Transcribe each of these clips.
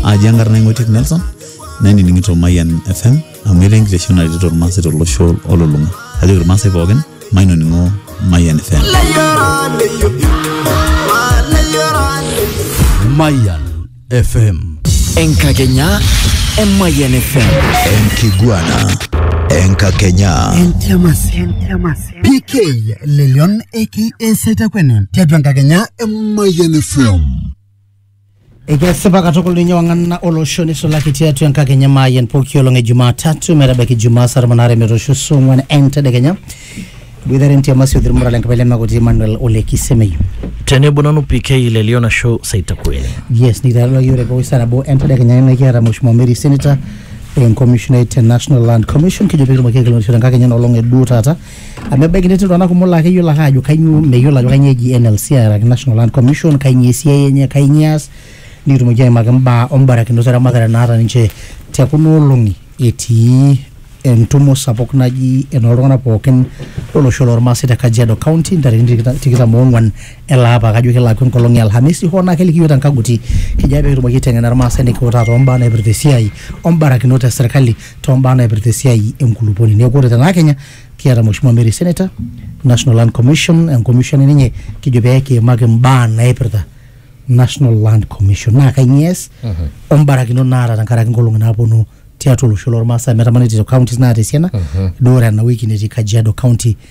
aji enkarna ing'oitik nelson nainining'ito mayian fm amu etaa enkitesheni naretito irmaasai tolosho olulung'a kajoki irmaasai pookin mainoning'o mayian fm Mayan FM. Enkakenya Emayian FM. Enkiguana. Enkakenya. PK Lelion aka Setakwene tiatua enkakenya e Mayian FM. Ekesipa katukul ninye wang'ana olosho nisulaki tiatua enkakenya maayian pooki olong e Jumatatu metabaiki Jumaa saa tomon aare metoosho saa ong'wan entedekenya. Iboitare entiama Siothi Murra le Nkapai Lemakoti Emmanuel Ole Kisemeyu. tenebo nanu PK le Lion Asho Saitakueni. Yes, nikitaarua yiok te pooki saa nabo entedekenya ina kiata Mheshimiwa Mary Senator enkomishonai te National Land Commission kijo pee kitumoki aikilikuanishore enkakenya ena olong e duo taata amu ebaiki netii iltung'anak kumok laa keyiolo ake ajo kainyioo meyiolo ajo kainyioo eji NLC araki National Land Commission kainyioo esiai enye kainyioo eas nikitumoki aimaki imbaa ombarakinot eramatare naata ninche tekuna olong'i etii entumo sapuk naji enooltung'anak pookin lolosho lormaasai te Kajiado County ntarikini tikita- tikitam oong'wan ele apa kajo kelakua enkolong e Alhamisi hoo naa keliki iyiook te nkaguti kijo ake pee kitumoki aiteng'ena irmaasai nikiutaa too mbaa naipirta esiai ombarakinot e serkali too mbaa naipirta esiai enkulupuoni. Neeku ore tena Kenya kiata Mheshimiwa Mary Senator, National Land Commission, enkomishoni ninye kijo pee kiimaki mbaa naipirta National Land Commission. Naa kainyoo ees o mbarakinot naata tenkaraki nkolong'i naapwonu tiatwa olosho lormaasai. Amu etamana etii counties naata esiana, duo ore ena wiki netii Kajiado county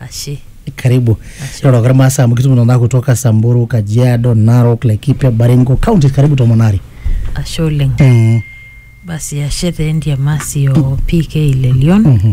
Ashe. Karibu. Ashe. Roroki irmaasai amu kitum nena kutoka Samburu, Kajiado, Narok, Laikipia, Baringo, counties karibu tomon are. Ashe oleng. Mm. Basi ashe taa entiamasi o PK Lelion. Mhm.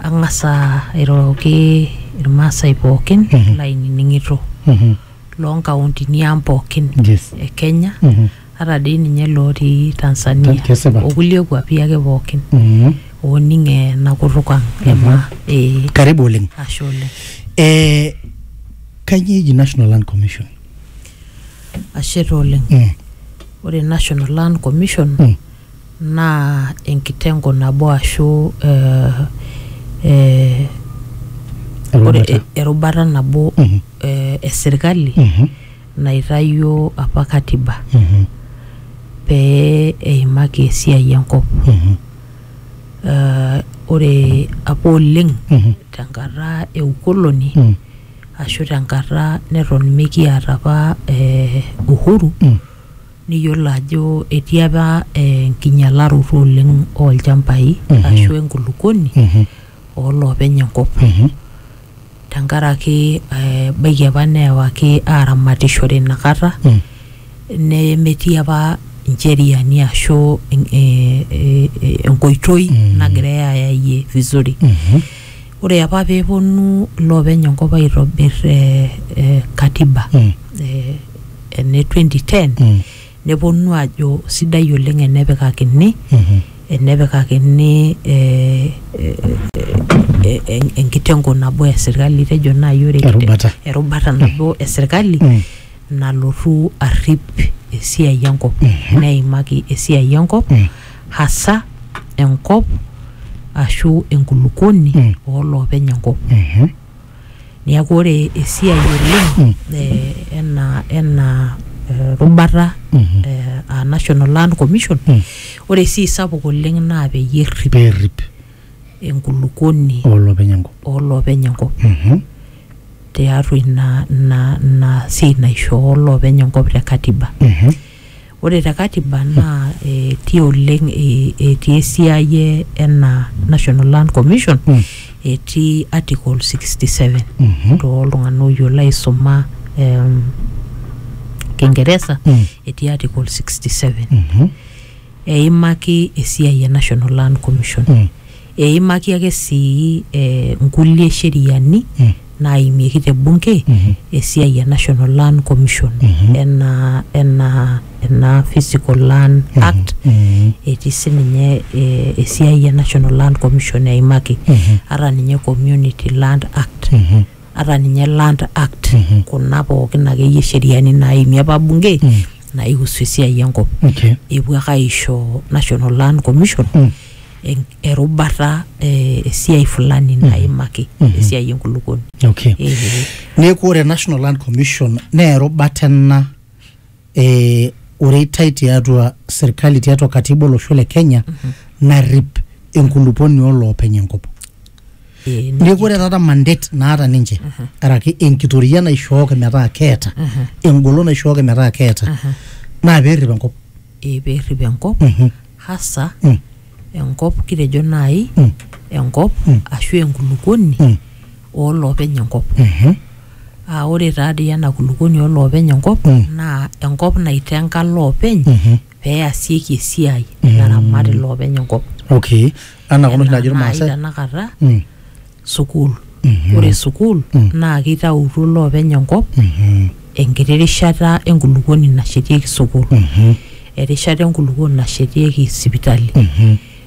Ang'asa airoroki irmaasai pookin Mhm. laainining'ito. Mhm. loo nkauntini ang pookin Yes. e Kenya Mhm. ata dii ninye lootii Tanzania Kesipa. okulie kuapi ake pookin Mhm. ooning ena kutuk ang e maa ee karibu oleng ashe oleng eh, kanyio eji national land commission ashe taa oleng Mm. ore national land commission Mm. naa enkitengo nabo ashu eh, eh, ore Erubata. e- erubata nabo Mhm. eh, esirkali Mhm. naitayio apa katiba Mhm. pee eimaki esiai enkop Mhm. Eh, ore apa oleng Mhm. tenkata e ukoloni Mhm. ashu tenkata neton mikiata apa eh, uhuru Mm. niyiolo ajo etii apa enkinyalaroto oleng olchambai Mhm. ashu enkulukuoni Mhm. oloopeny enkop Mhm. tenkaraki eh, ebaiki apa neewaki aramatishore inakata Mm. nemetii apa incheriani ashu eh, eh, eh, enkoitoi Mm. nagirai ayayie vizuri Mhm. Ore apa pee eponu iloopeny enkop aitobir eh, eh, katiba Mm. eh, ene 2010 Mm. neponu ajo sidai oleng enepikakini Mhm. enepikakini eh, eh, eh, en- enkitengo nabo e sirkali tejo naaji ore Erubata. erubata nabo e sirkali Mm. nalotu arrip esiai enkop neimaki esiai enkop Mm. hasa enkop ashu enkulukuoni Mm. ooloopeny enkop. Mhm. Neeku ore esiai oleng Mm. eh, ena ena eh, rubata Mhm. eh, aa National Land Commission Mm. ore esiai sapuk oleng naa peyie errip Perrip enkulukuoni olopeny enkop. ooloopeny enkop Mhm. tiatua ina ina ina siai naishoo loopeny enkop te katiba. Mhm. Ore te katiba naa etii oleng etii esiai ena National Land Commission etii article sixty seven toltung'anak oyiolo aisuma em kingeresa etii article sixty seven eimaki esiai e National Land Commission. Eimaki ake sii nkulie sheriani naaimieki te bunge esiai e National Land Commission enaa ena Physical Land Act etii sininye esiai e National Land Commission eimaki ata ninye Community Land Act ata ninye Land Act kuna pookin akeyie sheriani naaimie apa bunge naihusu esiai enkop epuo ake aisho National Land Commission en- erubata eh, esiai fulani naimaki Mhm. esiai enkulukuoni okay Eh, neeku ore national land commission naa erubata ena eh, oreitai tiatua serkali tiatua katiba olosho le kenya narrip enkuluponi oloopeny enkop eh, neeku ore taata mandate naata ninche araki enkitoria naishooki metaa keeta engolon naishooki metaa keeta naa peerrip enkop eh, perrip enkop Mhm. hasa Mm. enkop kitejo naai Mm. enkop Mm. ashu enkulukuoni Mm. ooloopeny enkop Mhm. aa ore taadii ena kulukuoni ooloopeny enkop Mm. naa enkop naitenga loopeny Mhm. peasieki esiai Mm. naramat iloopeny enkop okay anaa kuna oshi naajo Enaa naai irmaasai tenakata Mm. sukuul. Ore sukuul naa keitautuo iloopeny enkop enkiti rishata enkulukuoni nashetieki sukuul, erishata enkulukuoni nashetieki sipitali,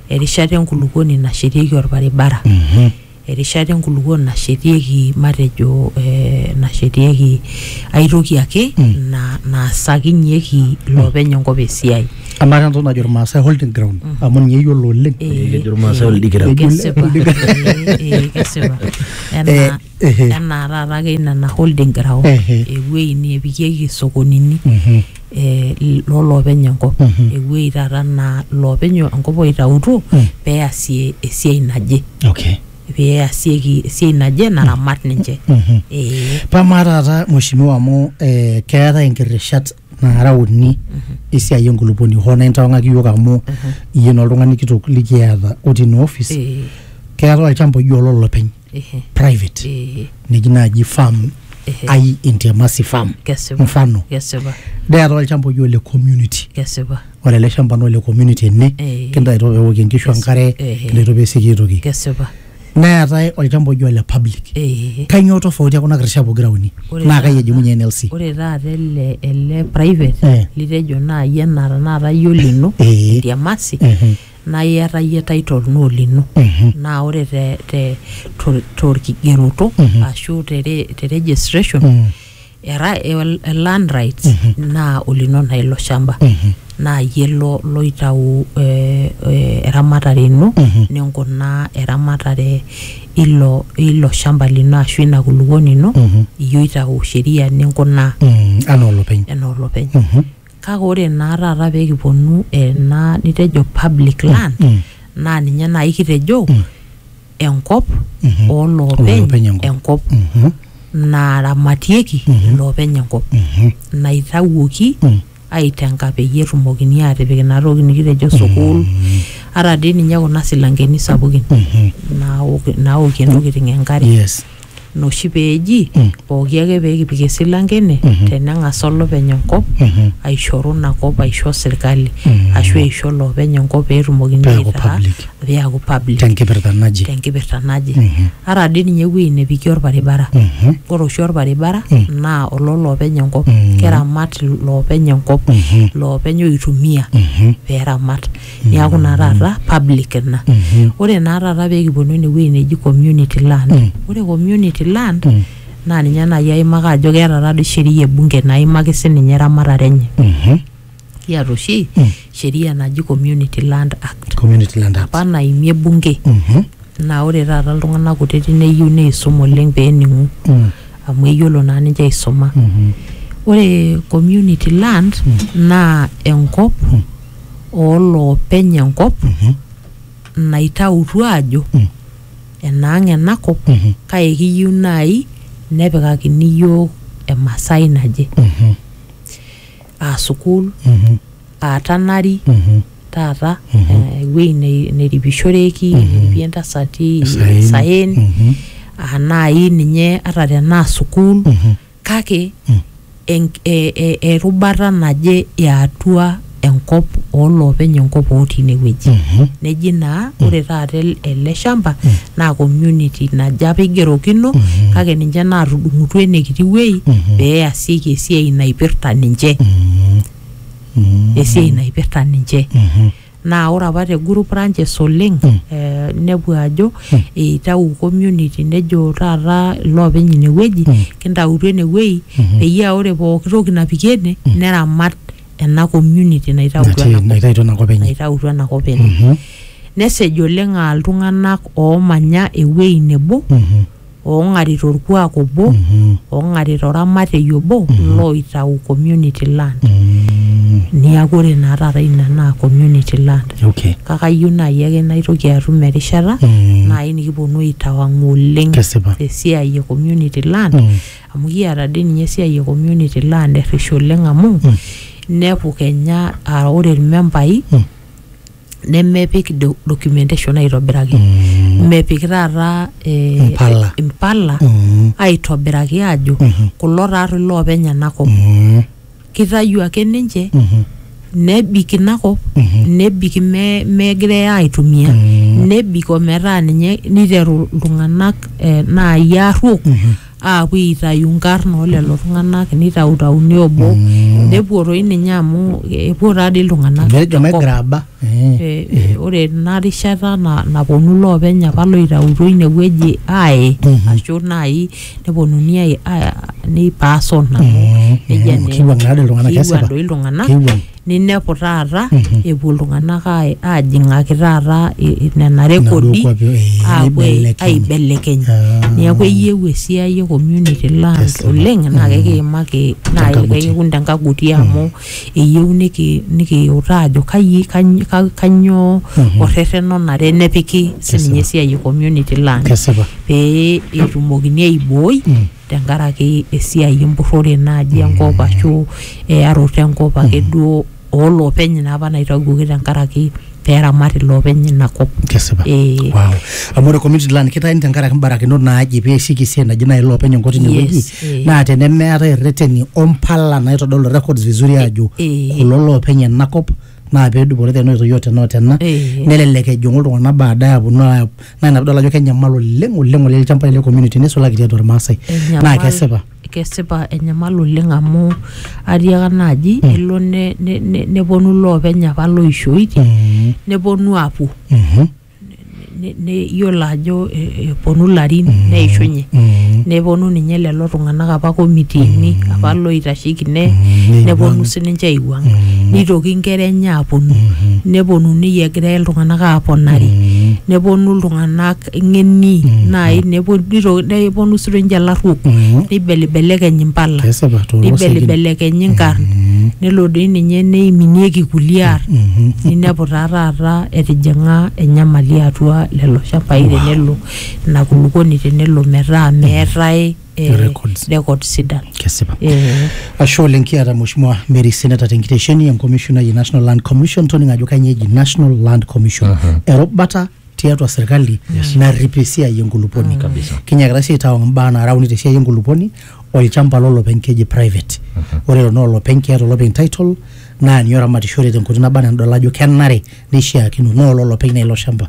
erishata enkulukuoni nashetieki olbaribara, erishata enkulukuoni nashetieki matejo eh, nashetieki aitoki ake na- naasakinyeki iloopeny enkop esiai. Amaa taa entoki najo irmaasai holding ground amu ninye eyiolo oleng. Ee, Kejo irmaasai ee, oldigira. ee, Kesipa. Ee, ee, kesipa. Enaa- Eh, ehe. Enaa taata ake nena holding ground, Ehe. ewuei nepikieki isokonini Mhm. eh, l- lolopeny enkop. Mhm. Ewuei taata naa loopeny enkop oitautuo Mm. peasie esiai naje. Okay. Peasieki esiai naje naramat ninche. Mhm. Ee. Paa maa taata mheshimiwa amu eh, keetae inkirishat naara uni esiai enkulupuoni hoo naa intawang'aki iyiook amu iyie naa oltung'ani kitok likiata otii ina ofis Eh, keetae olchamba oji ololopeny eh, private eh, neji naaji farm eh. ai intiamasi farm Kesipa. mfano Kesipa. neetae olchamba oji ole community Kesipa. ore ele shamba naa ole community ene Eh. kintaito peewokie inkishu enkare Eh. kintaito peesieki aitoki Kesipa. neetae olchamba oji ole public Eh, kainyoo tofauti ekuna kirishat pokira uni Ore naa kai taata- ejing'unye NLC ore taata ele ele private Eh. litejo naaji enaa tenakata iyie olino Eh. itiamasi Mhm. naa iyata iyie title naa olino Mhm. naa ore te te to- torkigeroto Mhm. ashu te re- te registration Mm. era el- el- land rights naa olino naa ilo shamba naa iyie lo loitau eh, eh, eramatare ino ninkunaa eramatare ilo ilo shamba lino ashu ina kulukuoni ino iyie oitau sheria ninkunaa Mm, anaa olopeny enaa olopeny kake ore naa taata peekiponu ena nitejo public land naa ninye naaji kitejo enkop Mhm. oo Oloopeny loopeny enkop. enkop Mhm. naaramatieki Mhm. iloopeny enkop Mhm. naitawuoki Mm. aitenga peyie etumokini aatipik ina toki nikitejo sukuul ata dii ninye kuna silankeni sapukin Mhm. naok- naokie ntokitin enkare yes ina oshi peeji Mm. pooki ake peekipik esilanke ene Mhm. teneng'asa olopeny enkop Mhm. aishoru ina kop aisho sirkali Mm. ashu eisho loopeny enkop peetumokini Peeku aitaa public. peeku public tenkipirta naje tenkipirta naje Mhm. ata dii ninye ewueji nepiki orbaribara Mhm. ore oshi orbaribara Mm. naa ololoopeny enkop Mm. keramat loopeny enkop Mhm. loopeny oitumia Mhm. peramat niaku naa taata public ina ore naa taata peekiponu enewueji neji community land Mm. ore community land Mm. naa ninye naaji aimaka ajo keeta taadoi sheria ebunge naimaki sininye eramatare enye Mhm. kiata oshi Mm. sheria naji community land act community land act apa naimie bunge Mhm. naa ore taata iltung'anak kutiti neyieu neisum oleng peening'u Mm. amu eyiolo naa ninche aisuma Mhm. ore community land naa enkop ooloopeny enkop naitautuo aajo enaang ena kop kake kiyieu naai nepikakini iyiook emasai naje aa sukuul aa tanari taata eh, ewueji nei- neripishoreki neripie intasati isaen aa naai ninye ata tenaa sukuul kake Mm. en- e- e- erubata naje eatua enkop ooloopeny enkop otii inewueji Mhm. neji naa ore taata el- ele shamba naa community naje apa eigerokino kake ninche naatudung'utua enekiti wuei Mhm. pee easieki esiai naipirta ninche Mm. Mm. esiai naipirta ninche Mhm. Naa ore apa te group ranches oleng eh, inepu ajo eitau community nejo taata iloopeny inewueji kintautu enewuei peyie aa ore pooki toki napiki ene neramat ena community naitautua Natii- ena kop naitautua ena kop enye. naitautua ena kop enye. Nesej oleng aa iltung'anak oomanya ewuei nebo oong'ari torkuak obo oong'ari toramatei obo looitau community land Mm. niaku ore naa taata ina naa community land Okay. kake ayieu naaji ake naitoki atum erishata Mm. naaji nikiponu aitawang'u oleng Kesipa. tesiai e community land Mm. amu kiata dii ninye esiai e community land errish oleng amu inepu kenya aa ore irmembai Mm. nemepik do- documentation aitobiraki Mm. mepik taata eh, Impala. impala Mm. aitobiraki ajo Mhm. kulo taarri loopeny enakop Mm. kitayu ake ninche Mhm. nebik inakop Mhm. nebik me- megirai aitumia Mm. nebik ometaa ninye niteru iltung'anak eh, naai arruok Mhm. aapuo aitayu nkarn oo lelo tung'anak nitautauni obo nepuo toi ninye amu epuo taadii iltung'anak Nejo te kop. megraba. Eh. Eh, eh, ore ena rishata na- naponu loopeny apa loitautuo inewueji aaye Mhm. ashu naaji neponuni ai- ai- neipaasona amu Mhm. nejia Mhm. naa Kiwuang' naa doi iltung'anak, kiwuang kesipa. doi iltung'anak Kiwuang'. ninepu taata epuo iltung'anak ai- aajing'aki taata i- i- nena rekodi kuapi, eh, aapuo ai- aibelekeny. aibelekeny Ah. neeku eyieu esiai e community land Yes, oleng naa kekiimaki naaji Tenkaguti. kaikikun tenkaguti amu eyieu niki- nikiutaa ajo kayi kany- ka- kanyoo orrerren onare nepiki sininye esiai e community land kesipa pee etumokini aibooi tenkaraki esiai empurrore naaji mm. enkop mm. ashu eyaroto enkop mm. ake duo ooloopeny naa apa naitawuoki tenkaraki peramat iloopeny ina kop. Kesipa. Eh. Wow. Amu ore community land kitayuni tenkaraki mbarakinot naaji pee eisik esiai naji naaji iloopeny enkop tine wueji yes, eh. naa tenemeetae irreteni ompala naitodolu records vizuri eh, aajo eh. kulo loopeny ena kop naa pedupore tena oitoi o tena o tena Eh. nelelek ejing'u iltung'anak baadaye aponu aayap naa ina pidol ajo kenyamal oleng oleng oleng ilchambai le community nisulaki tiatua irmaasai naa Enyamal- kesipa kesipa enyamal oleng amu atiaka naaji elo ne- ne- ne- neponu loopeny apa loishoitie Mm, neponu apuo mhm. ne- ne- iyiolo ajo eh, eponu ilarin neishunye Mm. neponu ninye lelo tung'anak apa komitiini apa loitasheki ne Mm, neponu neiwuang'. sininche aiwuang Mm. nitoki inkera enye aponu Mhm. neponunui egira iltung'anak aponari Mm. neponu iltung'anak ng'eni Mm. naai nepo- nito- neponu sininche ilarruok Mm. neibelibelekeny impala kesipa toolosegin. neibelibelekeny inkarn Mm. nelo doi ninye neiminieki kulie arn Mhm. ninepu taa taata etijing'a enyamali atua lelo shambai wow. tenelo ina kulukuoni tenelo metaa mm. meetae eh, records, records sidan kesipa eh. ashe oleng kiata mheshimiwa Mary Seneta tenkitesheni enkomishonai e National Land Commission toning ajo kainyoo eji National Land Commission uh -huh. erubata tiatua serkali narrip esiai enkulupuoni Kabisa. kinyakita sii aitawang imbaa naara uni tesiai enkulupuoni olchamba lolopeny keji private ore lelo naa olopeny keeta olopeny title naa ninye oramatishore tenkoitoi naba anaa enidol ajo kenare neishiakino naa ololopeny naa ilo shamba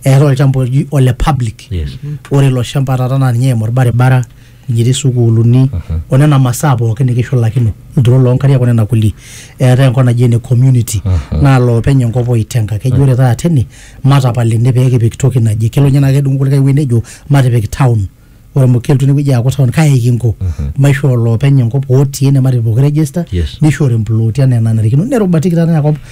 eetae olchamba oji ole public Yes. ore ilo shamba taata naa ninye eimu orbaribara etii sukuuluni o nena masaa pookin nikishulakino ilturot loo nkariak o nena kulie eetae enkop naji ene community naa loopeny enkop oitenga keji ore taata ene matapal ene pee kipik toki naje kelo ninye naa kedung kulikae wueji nejo matipik town ore amu kelotu enewueji aaku town kai kinko maishoo loopeny enkop otii ene matipik pooki register Yes. nishori implooti enaa enanarikino nerubatiki taata inakop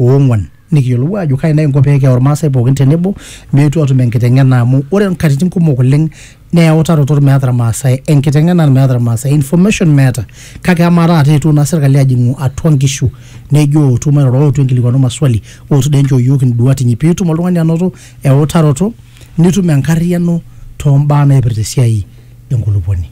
oong'uan nikiyiolou aajo kai naa inko pee keyau irmaasai pookin tenebo meetu atum enkiteng'ena amu ore nkatitin kumok oleng naa eutaroto meeta irmaasai enkiteng'ena meeta irmaasai information meeta kake amaa taata eetuo naa serkali ajing'u atua nkishu nejo ootu mairoro ootu inkilikuanu maswali ootu dee nchoo iyiook induat inyi piitum oltung'ani anoto eutaroto nitum enkarriyiano too mbaa naipirta esiai enkulupuoni.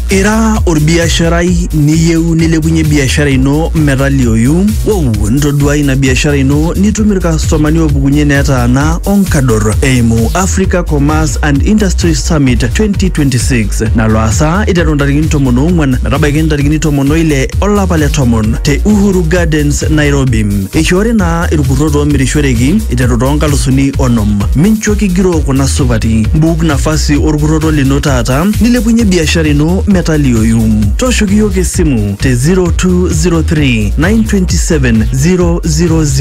Ira olbiasharai niyieu nilepunye biashara ino metaliooyu? Wou ntoduaa ina biashara ino nitum ilkastomani oopukunye netaana o nkador eimu Africa Commerce and Industry Summit 2026 nalo aasa eiteru ntarikini tomon oong'uan metabaiki ntarikini tomon oile olapa le tomon te Uhuru Gardens, Nairobi. Eishoori ina irkurrot oomirishoreki iteru too nkalusuni onom. Mincho kigiroo kuna supati. Mbuk nafasi orkurroto lino taata nilepunye biashara ino metalioyu. Tooshoki iyiook esimu te 0203 927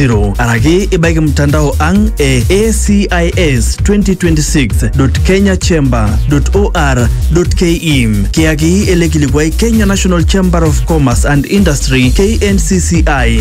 000 araki ibaiki mtandao ang e ACIS 2026.kenyachamber.or.ke. Kiyaki ele kilikuai Kenya National Chamber of Commerce and Industry KNCCI.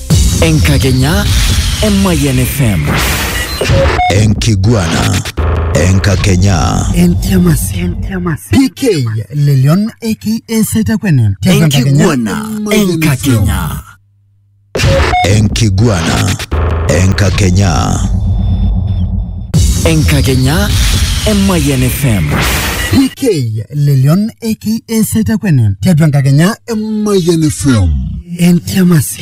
Enkakenya e Mayian FM. Enkiguana. Enkakenya. PK Lelion aka Saitakwene. Enkiguana. Enkakenya. Enkiguana. Enkakenya. Enkakenya e Mayian FM. PK Lelion aka Setakwene tiatua enkakenya e Mayian FM. Entiamasi.